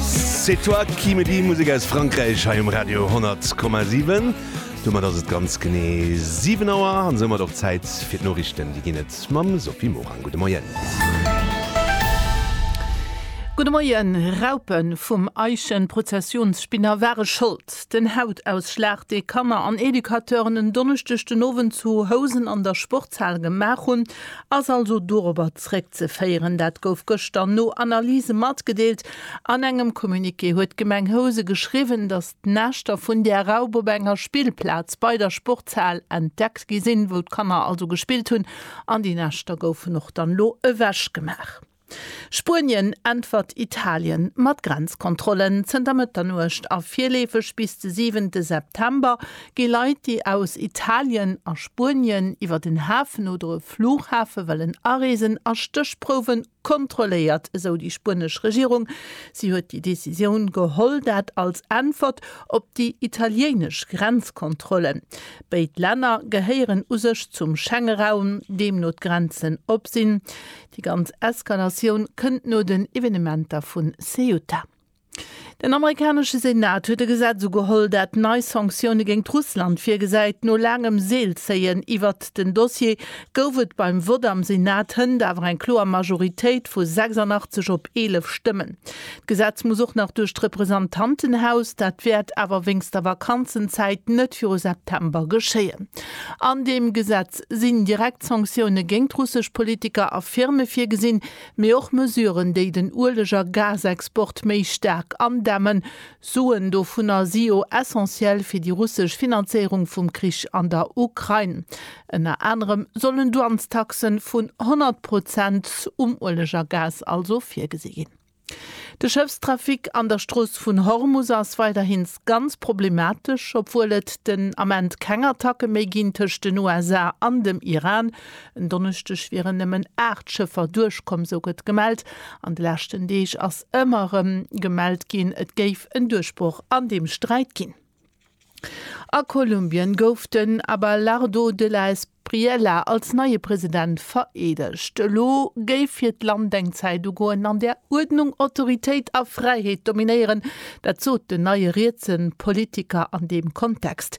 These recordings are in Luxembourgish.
C'est toi qui me dis, Musek aus Frankräich hei um Radio 10,7. Domat ass et ganz genee 7 Auer an soumat och Zäit fir d'Noriichten. Déi ginn et mam Sophie Morang. Gudde Moien. Gudde Moien. Raupen vum Eichenprozessionsspinner ware Schold. Den Hautausschlag, dee Kanner an Educateuren en Donneschdeg den Owend zu Housen an der Sportshal gemaach hunn, ass also dorobber Zréckzeféieren. Dat gouf gëschter no Analyse matgedeelt. An engem Communiqué huet d'Gemeng Housen geschriwwen, datt d'Näschter vun där Raup op enger Spillplaz bei der Sportshal entdeckt gi sinn, wou d'Kanner also gespillt hunn, an déi Näschter goufen och dann elo ewechgemaach. Spuenien äntwert Italien mat Grenzkontrollen. Zënter Mëtternuecht a virleefeg bis de siwente September Gi Leit, déi aus Italien a Spuenien iwwer den Hafen oder e Flughafe wëllen areesen, a Stéchprouwe kontrolléiert, esou déi spuenesch Regierung. Si huet déi Decisioun geholl, dat als Äntwert op déi italiéinesch Grenzkontrollen. Béid Länner gehéieren u sech zum Schengeraum, deemno d'Grenzen op sinn. Déi ganz Eskalatioun kënnt no den Evenementer vu Ceuta. Den amerikanesche Senat huet e Gesetz ugeholl, dat nei Sanktioune géint Russland virgesäit. No laangem Seelzéien iwwert den Dossier gouf et beim Vott am Senat hënt awer eng kloer Majoritéit vu 86 op 11 Stëmmen. D'Gesetz muss och nach duerch d'Representantenhaus, dat wäert awer wéinst der Vakanzenzäit net viru September geschéien. An deem Gesetz sinn direkt Sanktioune géint russesch Politiker a Firme virgesinn, Mee och Mesuren, déi den Ueleg a Gasexport méi staark andämmen. Suen dovunner si jo essentiell fir déi russesch Finanzéierung vum Krich an der Ukrain. Ënner anerem sollen Douanestaxen vun 100 Prozent um Ueleg a Gas also virgesi ginn. De Schëffstrafic an der Strooss vun Hormus ass weiderhin ganz problematesch, obwuel et den Ament keng Attacke méi ginn tëscht den USA an dem Iran. En Donneschdeg wieren nëmmen 8 Schëffer duerchkomm, sou gëtt gemellt. An de leschten Deeg ass ëmmer erëm gemellt ginn, et géif en Duerchbroch an deem Sträit ginn. A Kolumbien gouf den Abelardo de la Espriella als neie President vereedegt. Elo géif fir d'Land eng Zäit ugoen, an där Uerdnung, Autoritéit a Fräiheet dominéieren. Dat sot den neie rietse Politiker an deem Kontext.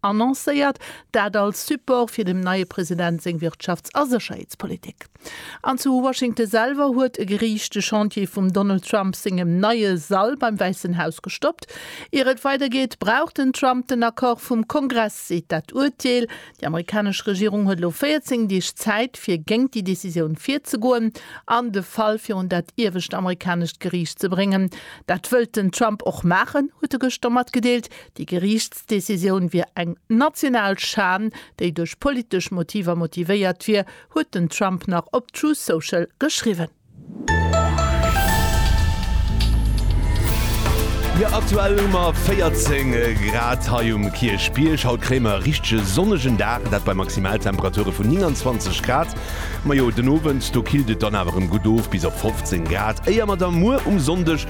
Annoncéiert, dat als Support fir dem neie President seng Wirtschafts a Sécherheetspolitik. An zu Washington selwer huet e Geriicht de Chantier vum Donald Trump sengem neie Sall beim Wäissen Haus gestoppt. Ier et weidergeet, brauch den Trump den Accord vum Kongress, seet dat Urteel. Déi amerikanesch Regierung huet elo 14 Deeg Zäit, fir géint déi Decisioun virzegoen an de Fall virun dat iewescht amerikanescht Geriicht ze bréngen. Dat wëllt den Trump och maachen, huet e gëschter matgedeelt. Déi Geriichts. D'Decisioun wier eng national Schan, déi duerch politesch Motiver motivéiert wier, huet den Trump nach op Truth Social geschriwwen. Jo aktuell hu mer 14 Grad hei um Kierchbierg. Haut kréie mer e richtege sonnegen Dag an dat bei Maximaltemperature vun 29 Grad. Majo den Owend do killt et dann awer erëm gutt of bis op 15 Grad, éier mer da muer um Sonndeg